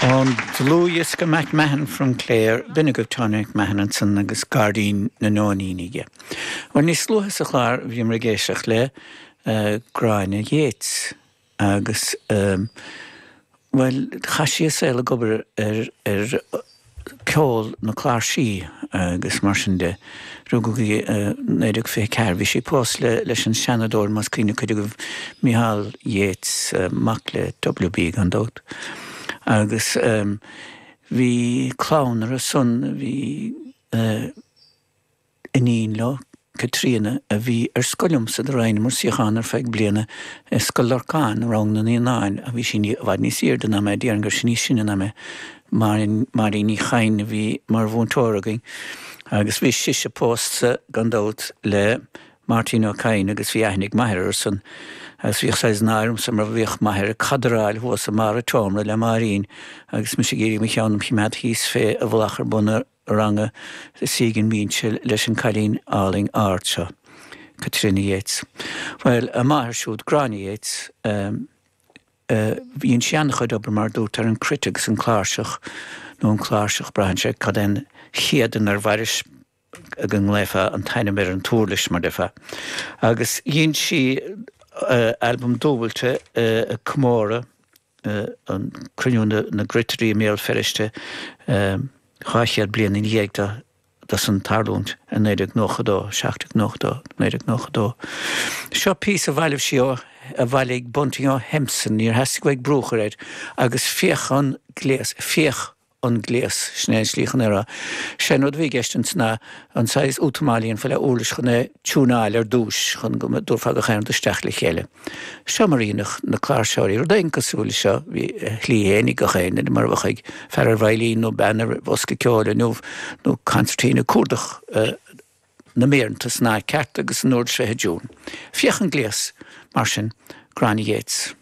Ón dlúthdhiosca MacMahon From Clare, b'in é agaibh Tony MacMahon ansan agus Gairdín na Nóiníní aige. Bhuel níos luaithe sa chlár bhíomar ag éisteacht le Gráinne Yeats. Agus, bhuel, chaith sí a saol ag obair ar, ar ceol na cláirsí agus mar sin de. Rugadh í i naoi déag fiche ceathair. Bhí sí pósta le, leis an Seanadóir, más cuimhin le cuid agaibh, Micheál Yeats, mac le W.B. gan dabht. Agus bhí clann orthusan, bhí. iníon leo, Caitríona, a bhí ar scoil liomsa, do roinneamar suíochán ar feadh bliana i Scoil Lorcáin, rang na naíonáin, ach bhí sí i bhfad níos aoirde ná mé, déarfainn go raibh sí níos sine ná mé, Máirín, Máirín Ní Chadhain, a bhí mar mhúinteoir againn agus bhí sise pósta gan dabht le Máirtín Ó Cadhain agus bhí aithne ag m'athair orthusan agus bhíodh saghas náire ormsa mar bhíodh m'athair ag cadráil thuas i mbarr an tseomra le Máirín agus mise ag iarraidh mo cheann a choimeád thíos fé i bhfolach ar bun na ranga im shuí ag an mbinse leis an cailín álainn ard seo, Caitríona Yeats. Bhuel, a máthair siúd, Gráinne Yeats, dhein sí an-chuid obair, mar a dúrt, ar an cruit agus an cláirseach, nó an cláirseach, braitheann sé cad é an chéad inar mhairis go nglaofá an t-ainm ar an t-uirlis, mar déarfá. Agus dhein sí albam dúbailte ag comóradh. an cruinniú na gcruitirí i mBéal Feirste dhá chéad bliain ina dhiaidh do, dó san tarlúint i 1992, 1792, 1992. Seo píosa a bhailimh sí ó, a bhailigh Bunting ó Hempson, níor theastaigh uaidh brú a chur air, agus féach an gléas, féach an gléas. Sin é an slí chun é a rá. Sé an rud a bhí i gceist ins na, an saghas útamáil a dhéanfaí le uirlis chun é tiúnáil ar dtúis chun go dtabharfá gach aon rud isteach le chéile. Seo mar a dheineadh na cláirseoirí rud éigin cosúil le seo, bhí a shlí fhéin ag gach aon duine mar a bheadh ag fear ar veidhlín nó bean ar bhosca ceoil inniu nó concertina cuardach na méireanta san áit ceart agus an uirlis bheith i dtiún. Féach an gléas mar sin, Gráinne Yeats.